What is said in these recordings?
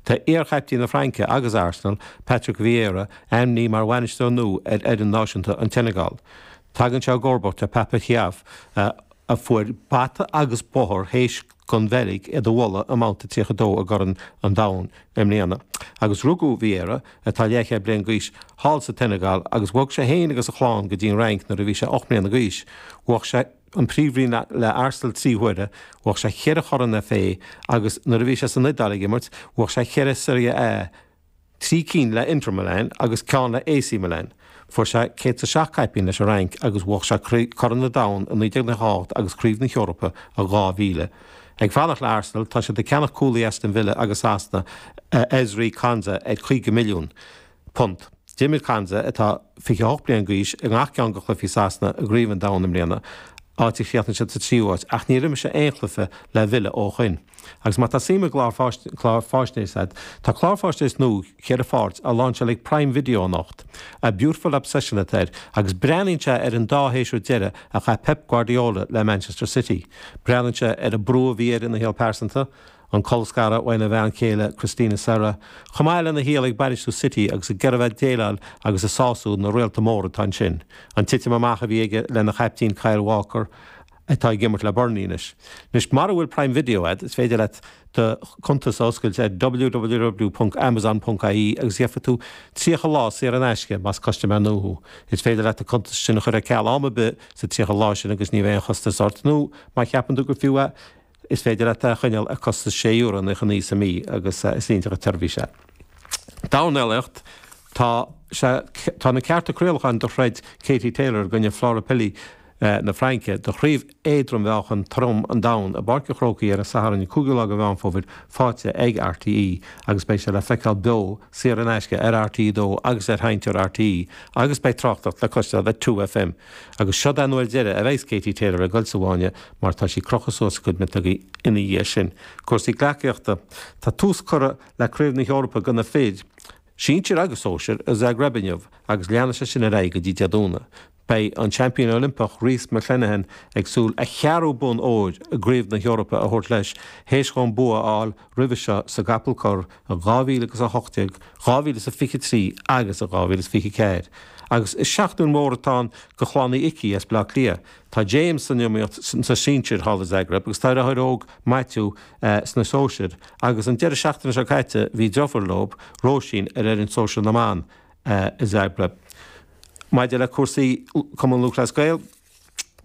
Tá iar-chaiptín na Fraince agus Arsenal, Patrick Vieira, ainmnithe mar bhainisteoir nua ar fhoireann náisiúnta an tSeineagáil. Tagann sé i gcomharbacht ar Pape Thiaw a fuair bata agus bóthar théis don Bheilg iad a bhualadh i mBabhta 32 i gCorn an Domhain i mbliana. Agus rugadh Vieira, atá leathchéad bliain d'aois, thall sa tSeineagáil agus bhog sé féin agus a chlann go dtí an Fhrainc nuair a bhí sé ocht mbliana d'aois. Bhuaigh sé an príomhroinn le Arsenal trí huaire, bhuaigh sé ceithre Chorn FA agus nuair a bhí sé san Iodáil ag imirt, bhuaigh sé ceithre Serie A, trí cinn le Inter Milan agus ceann le AC Milan. Fuair sé céad 's a seacht caipín leis an Fhrainc agus bhuaigh sé Corn an Domhain i 1998 agus Craobh na hEorpa i 2000. Ag fanacht le Arsenal, tá siad ag ceannach cúlaí Aston Villa agus Sasana, Ezri Konsa, ar 50 milliún. punt. D'imir Konsa, atá 28 bliain d'aois, i ngach ceann de chluichí Sasana i gCraobh an Domhain i mbliana, áit a chríochnaigh siad sa tríú háit, ach níor imir sé aon chluiche le Villa ó shin. Agus má tá suim i gclár faisnéise agat, tá clár faisnéise nua ceithre pháirt á láinseáil ag Prime Video anocht. 'A Beautiful Obsession' atá air, agus breathnaíonn sé ar an dá shéasúr deireadh a chaith Pep Guardiola le Manchester City. Breathnaíonn sé ar an brú a bhí air ina shaol pearsanta, an colscaradh óna bhean chéile Cristina Serra, chomh maith lena shaol ag bainistiú City agus ag iarraidh a bheith ag déileáil agus ag sású na réalta móra atá ansin, an titim amach a bhí aige lena chaiptín Kyle Walker, atá ag imirt le Burnley anois. Anois, mura bhfuil Prime Video agat, is féidir leat do chuntas a oscailt ar www.amazon.ie agus gheofaidh tú 30 lá saor in aisce, más custaiméir nua thú. Is féidir leat an cuntas sin a chur ar ceal am ar bith sa 30 lá sin agus ní bheidh aon chostas ort, nó má cheapann tú gur fiú é Is féidir leat é a choinneáil ar costas sé euro nócha naoi sa mí agus is iontach an tseirbhís é. Dornálaíocht. Tá, tá na cearta craolacháin do throid Katie Taylor i gcoinne Flora Pili na Fraince do chraobh éadrom-mheáchan trom an domhain i bPáirc an Chrócaigh ar an Satharn an 5ú lá de Mheán Fómhair faighte ag RTÉ agus beidh sé le feiceáil beo saor in aisce ar RTÉ 2 agus ar sheinnteoir RTÉ agus beidh tráchtareacht le cloisteáil ar 2FM agus seod an uair deireadh a bheas Katie Taylor ag dul sa bhfáinne mar tá sí ag crochadh suas a cuid miotóga ina dhiaidh sin. Cúrsaí gleacaíochta. Tá tús curtha le Craobh na hEorpa do na fir, sinsir agus sóisir, i Zagreb inniu agus leanfaidh sé sin ar aghaidh go dtí Dé Domhnaigh. Beidh an Seaimpín Oilimpeach Rhys McClenaghan ag súil a cheathrú bonn óir i gCraobh na hEorpa a thabhairt leis, théis dhó an bua a fháil roimhe seo sa gcapall corr in 2000 agus 18, 2023 agus in 2024. Agus is seachtain mhór atá ann do chlann Uí Icí as Bleá Cliath. Tá James san iomaíocht sa sinsir thall i Zagreb agus tá a dheartháir óg Maitiú sna sóisir agus an deireadh seachtaine seo caite bhí deirfiúr leo, Róisín, ar fhoireann sóisear na mban i Zagreb. Maidir le cúrsaí Cumann Lúthchleas Gael,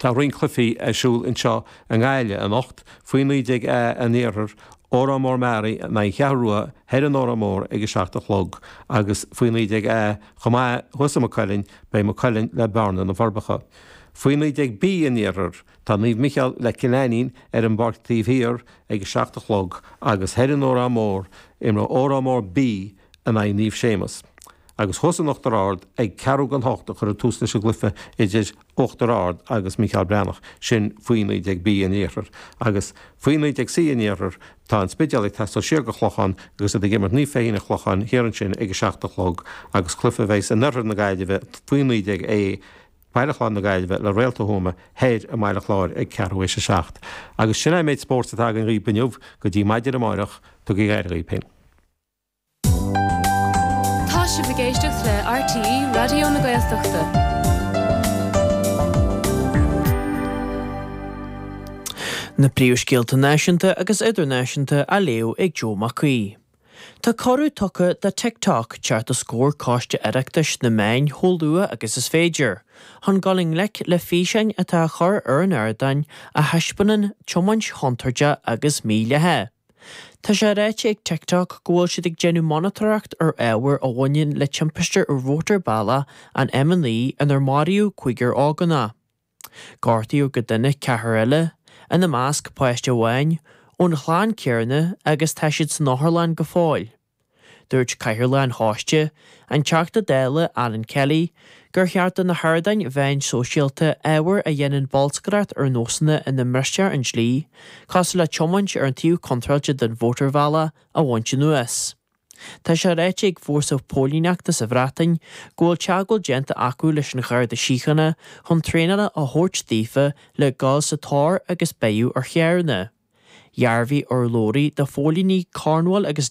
tá roinnt cluichí ar siúl anseo i nGaillimh anocht, faoi 19 A an Iarthair, Órán Mór-Meáraí in aghaidh na Ceathrún Rua thoir in Órán Mór ag a seacht a chlog agus faoi 19 A chomh maith thuas i Maigh Cuilinn beidh Maigh Cuilinn le Bearna-Na Forbacha. Faoi 19B an iarthair, tá Naomh Micheál le Cill Ainnín ar an bpáirc taobh thiar ag a seacht a chlog agus thoir in Órán Mór, imreoidh Órán Mór B in aghaidh Naomh Séamus. Agus thuas in Uachtar Ard, ag ceathrú chun a hocht a chuirfear tús leis an gcluiche idir Uachtar Ard agus Micheál Breathnach, sin faoi 19B an iarthair. Agus faoi 19C an iarthair, tá an Spidéal ag taisteal siar go dtí an Clochán agus iad ag imirt Naomh Féichín an Chlocháin thiar ansin ag a seacht a chlog agus cluiche a bheas in oirthear na Gaillimhe faoi 19A Baile Chláir na Gaillimhe le Réalta Thuama thoir i mBaile Chláir ag ceathrú tar éis a 7. Agus sin é an méid spóirt atá againn dhaoibh inniu, go dtí maidin amáireach, tugaigí aire dhaoibh féin. Tá sibh ag éisteacht le RTÉ Raidió na Gaeltachta. Na príomhscéalta náisiúnta agus idirnáisiúnta á léamh ag Joe Mac Aoidh. Tá cuireadh tugtha do TikTok teacht os comhair Coiste Oireachtais na Meán chomh luath agus is féidir, chun dul i ngleic le físeáin atá á gcur ar an ardáin a thaispeánann tiomáint chontúirte agus mídhleathach. Tá sé ráite ag TikTok go bhfuil siad ag déanamh monatóireacht ar ábhar a bhaineann le timpiste ar Mhótarbhealach an M9 inar maraíodh cúigear ógánach. Gortaíodh go dona ceathrar eile, ina measc páiste amháin, ón chlann céanna agus tá siad san otharlann go fóill. Dúirt cathaoirleach an choiste, an Teachta Dála Alan Kelly, gur cheart do na hardáin mheáin shóisialta ábhar a dhéanann bolscaireacht ar nósanna ina mbristear an dlí, cosúil le tiomáint ar an taobh contráilte den mhótarbhealach, a bhaint anuas. Tá sé ráite ag fórsa póilíneachta sa Bhreatain go bhfuil teagmháil déanta acu leis an Gharda Síochána chun traenála a thabhairt daofa le dul sa tóir agus breith ar charranna. Dhearbhaigh urlabhraí do phóilíní Cornwall agus.